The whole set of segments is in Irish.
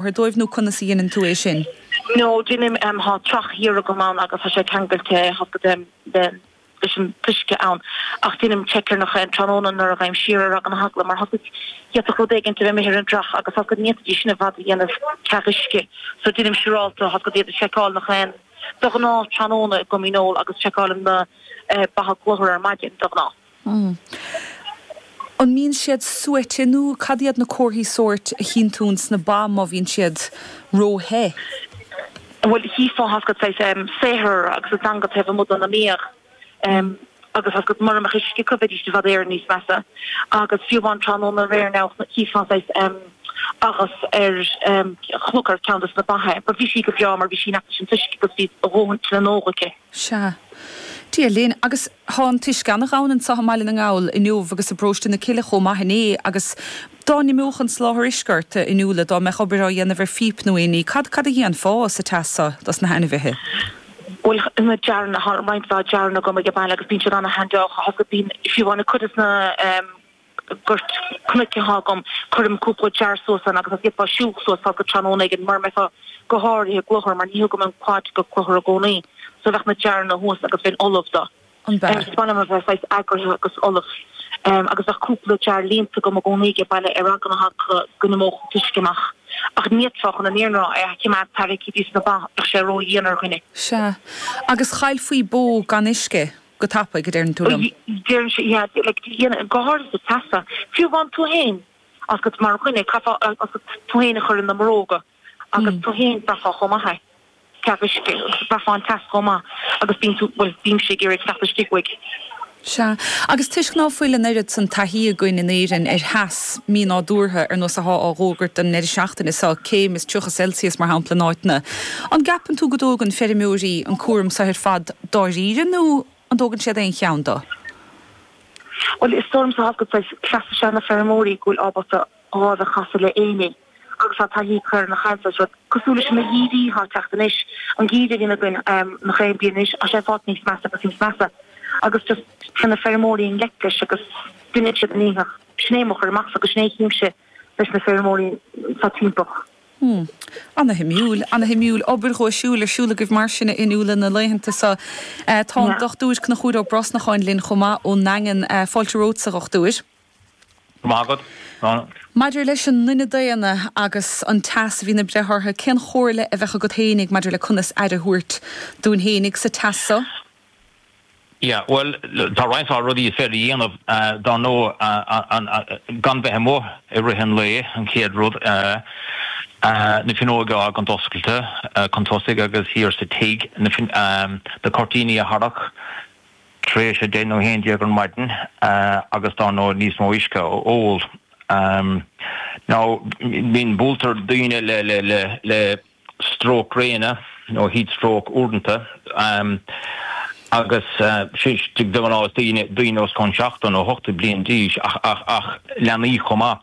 láthair dóibh nó conas a dheineann tú é sin? No, deinim, thá trach thiar agam ann agus thá sé ceangailte leis an t-uisce ann ach deinim check air nach aon tráthnóna nuair a théim siar ar eagla na heagla mar tá a fhios agat d'fhéadfadh rud éigin a bheith imithe ar an dtrach agus tá a fhios agat ní fhéadfaidís sin i bhfad a dhéanamh ceal uisce so deinim siúrálta tá a fhios agat iad a sheiceáil nach aon de ghnáth tráthnóna i gCom Dhíneol agus seiceálaim na ba i gClochar ar maidin de ghnáth. ii, An mbíonn siad suaite nó cad iad na comharthaí sóirt a chíonn tú sna ba má bhíonn siad ró-the? ii, Bhuel chífeá tá a fhios agat saghas saothar agus a dteanga taobh amuigh dena mbéal agus tá a fhios agat mura mbeadh uisce acu bheidís i bhfad Éireann níos measa agus fiú amháin tráthnóna aréir anois chífeá saghas agus ar chnocán ar ceann des na ba te but bhí sí go breá mar bhí sí in aice leis an t-uisce agus bhí a dóthain le n-ól aici. Sea. Dia linn. Agus tá an t-uisce ana-ghann anseo i mBaile na nGall inniu agus i bParóiste na Cille chomh maith inné agus dá n-imeodh an soláthar uisce ort, a Fhionnuala, dá mbeadh obair á dhéanamh ar phíp nó aon ní, cad, cad a dhéanfá sa teas seo dos na hainmhithe? Bhuel, na jaranna, thá roinnt mhaith jaranna agam aige baile agus bíonn siad an-handy, tá a fhios agat, bíonn, fiú amháin cuid dos na, goirt cnoic athá agam, cuirim cúpla jar suas ann agus gheofá siúl suas tá a fhios agat tráthnóna éigin, mura mbeifeá go h-áirithe i gClochar, mar ní thugaim an quad go Clochar i gcónaí, so bheadh na jaranna thuas agus bheinn ullamh dó. An b'fhearr? Is maith liom a bheith saghas eagraithe agus ullamh agus bheadh cúpla jar líonta agam i gcónaí aige baile ar eagla na h-eagla go n-imeódh an t-uisce amach. Ach ní fhéadfá you know an oiread a choimeád tarraicthe go dtí sna ba, bheadh sé ró-dhian ar dhuine. Sea. Agus chaillfí bó gan uisce. go tapaidh, a deireann tú liom. deireann sé, yeah, like, do you know, go háirithe sa teas so, fiú amháin tú fhéin, agus mar dhuine, chaithfeá, agus tú fhéin a chur ina mbróga, agus tú fhéin, bhraithfeá chomh maith é, tá a fhios agat, bhraithfeá an teas chomh maith, agus bíonn tú, bhuel, bímse ag iarraidh teacht istigh uaidh. Sea. Agus toisc ná fuil an oiread san taithí againn in Éirinn ar theas mínádúrtha, ar nós a thá á dh'fhógairt don ndeireadh seachtaine so, céim is tríocha Celsius, mar shampla, in áiteanna, an gceapann tú go dtógann feirmeoirí an cúram so ar fad, dáiríre nó an dtógann siad aon cheann dó? Bhuel, is dóigh liomsa go bhfuil cleas ages na feirmeoirí go bhfuil ábalta a lámh a chasadh le aon ní agus tá taithí acu ar nach aon tsaghas rud cosúil leis na geimhrí atá ag teacht anois, an geimhreadh a bhíonn againn nach aon bhliain anois tá sé ag fáilt níos measa agus níos measa agus just téann na feirmeoirí i ngleic leis agus deineann siad a ndícheall. Sin é mo chur amachsa agus sin é a chímse leis na feirmeoirí so timpeall. Hmm. Ana-shuimiúil. Ana-shuimiúil. Obair dhuaisiúil ar siúl agaibh mar sin, a Fhionnuala, na laethanta seo. Tá an Dr. Conchúr Ó Brosnacháin linn chomh maith ón nDaingean. Fáilte romhat, a Dhochtúir. Go raibh maith agat, a Shláine. Maidir leis an nduine daonna agus an teas a bhíonn ag breith orthu, cén chomhairle a bheadh agat fhéinig maidir le conas aire a thabhairt dúinn fhéinig sa teas so? Yeah, bhuel, tá roinnt mhaith rudaí is féidir a dhéanamh, dar ndóigh, gan bheith amuigh i rith an lae, an chéad rud, na finneoga a fhágaint oscailte chun tosaigh agus thiar sa tigh, na cuirtíní a tharrac tar éis a deich nó a haon déag ar maidin agus, dar ndóigh, níos mó uisce a ól. Now, bíonn, buailtear daoine le, le, le, le, stróc gréine nó heat stroke uaireanta, agus de ghnáth is daoine os cionn seachtó nó ochtó bliain d'aois ach leanaí chomh maith.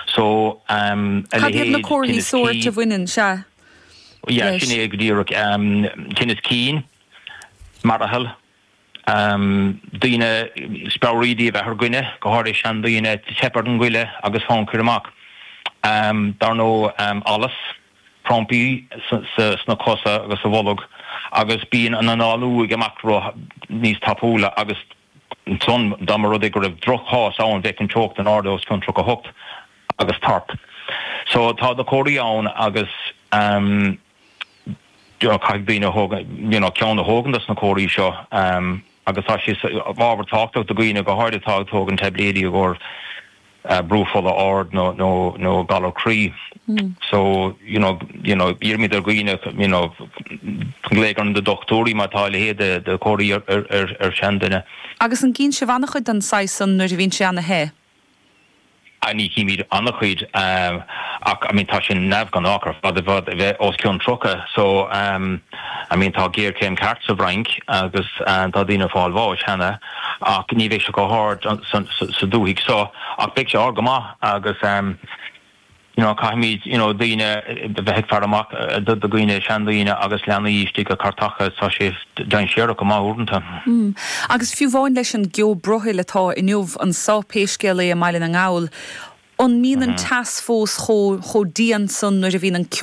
So, a leithéid, tinneas cinn. Cad iad na comharthaí sóirt a bhaineann leis? Yeah, sin é go díreach, tinneas cinn, mearathal. daoine, speabhraídí a bheith ar dhuine, go háirithe seandaoine, teip ar an ngoile agus fonn cur amach, dar ndóigh, allas, crampaí sna cosa agus sa bholg agus bíonn an análú ag imeacht níos tapúla agus ansan dá mba rud é go raibh droch-chás ann bheadh an teocht in airde os cionn 38 agus tart, So tá na comharthaí ann agus. caithfidh daoine a thóg you know ceann a thógaint as na comharthaí seo agus tá sé ana-thábhachtach do dhaoine go háirid atá ag tógaint taibléidí i gcomhair brú fola ard nó nó nó galar croí so you know you know iarraimid ar dhaoine you know glaoch ar na dochtúirí má tá a leithéid de de comharthaí ar ar ar ar sheanduine. Agus an gcíonn sibh an-chuid den saghas san nuair a bhíonn sé an-te? Ní chímid an-chuid ach I mean tá sé neamhghnách ar fad é a bheith os cionn 30 so I mean tá géarchéim ceart sa bhFrainc agus tá daoine ag fáil bháis cheana ach ní bheidh sé chomh hard sa dúthaigh so ach beidh sé ard go maith agus. you know caithfimid you know daoine a bheith ag faire amach do dhaoine, seandaoine agus leanaí istigh i gcartacha, tá sé dainséarach go maith uaireanta. Mm. Agus fiú amháin leis an gceo broighill atá inniu anso, pé scéal é, i mBaile na nGall, an mbíonn an teas fós chomh, chomh dian san nuair a bhíonn an ceo